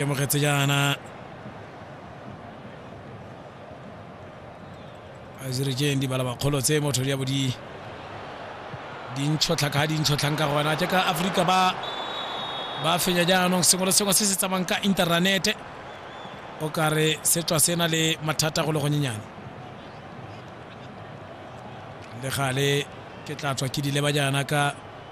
e mogetse jaana azirejeng di bala bakgolo tse motho di ya bo di dintshotlha ka dintshotlhang ka gona jaaka aforika ba ba fenya jaanong sengwe le sengwe se se tsamayng ka internete o kare se tswa se na le mathata go le gonyenyane le gale ke tla tswa ke di leba jaana ka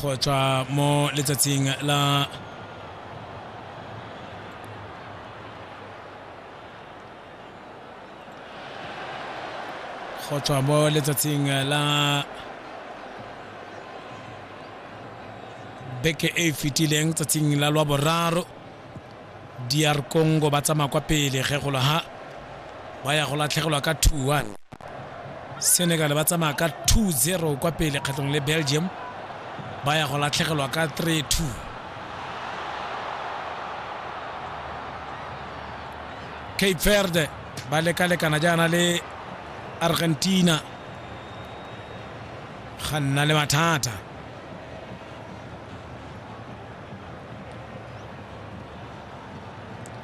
go tswa mo letsatsing la go tswa mo letsatsing la beke e e fetileng tsatsing la lwa boraro DR Congo ba tsamaya kwa pele ge go ha ba ya go latlhegelwa ka 2-1. Senegal ba tsamaya ka 2-0 kwa pele kgetlong le Belgium ba ya go latlhegelwa ka 3-2. Cape Verde ba lekalekana jaana le Argentina ga nna le mathata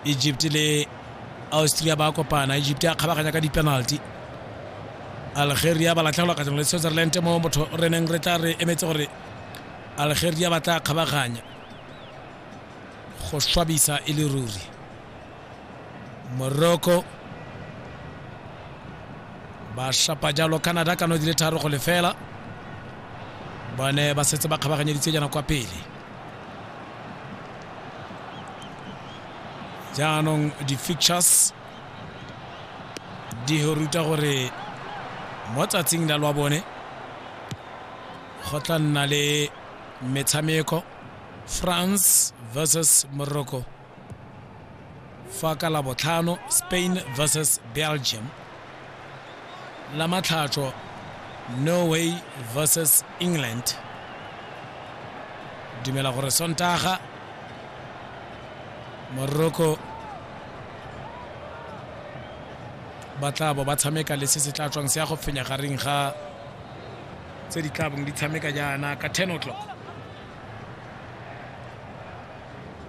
egypt le austria ba kopana egypt a kgabaganya ka di-penalty algeria ba latlhegelwa kgatlhanong le switzerland mo motho re neng re tla re emetse gore algeria ba tla kgabaganya go swabisa e le ruri morocco ba shapa jalo canada ka no di le tharo go lefela ba ne ba setse ba kgabaganyeditse jana kwa pele jaanong di-fictures di ruta gore mo tsatsing la lwa bone go tla nna le metshameko france versus morocco fa ka labotlhano spain versus belgium la matlhatso norway versus england dumela gore sontaga morocco ba tla bo ba tshameka le se se tla tswang se ya go fenya gareng ga tse di tlabong di tshameka jaana ka 10 o'clock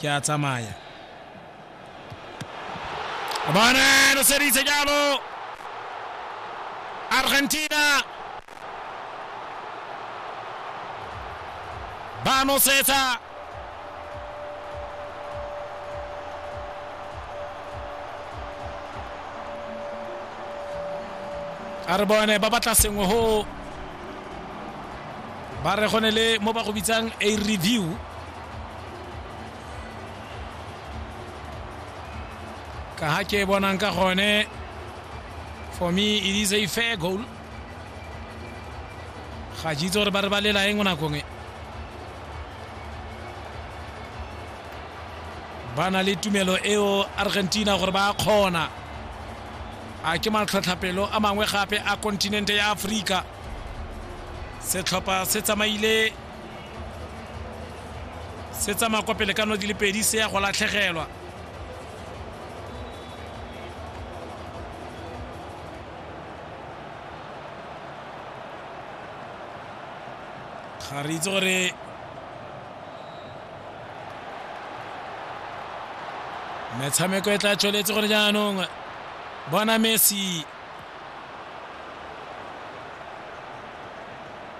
ke a tsamaya bone lo seditse jalo argentina ba nosetsa a re bone ba batla sengwe go ba re go ne le mo ba go bitsang a review ka ha ke bonang ka gone for me it is a fair goal ga ke itse gore ba re ba lela eng nakong e ba na le tumelo eo argentina gore ba kgona a ke matlhotlhapelo a mangwe gape a kontinente ya aforika setlhopha se tsamaile se tsamaya kwa pele ka no di le pedi se ya go latlhegelwa ga re itse gore metshameko e tla tsweletse gore jaanong bona messi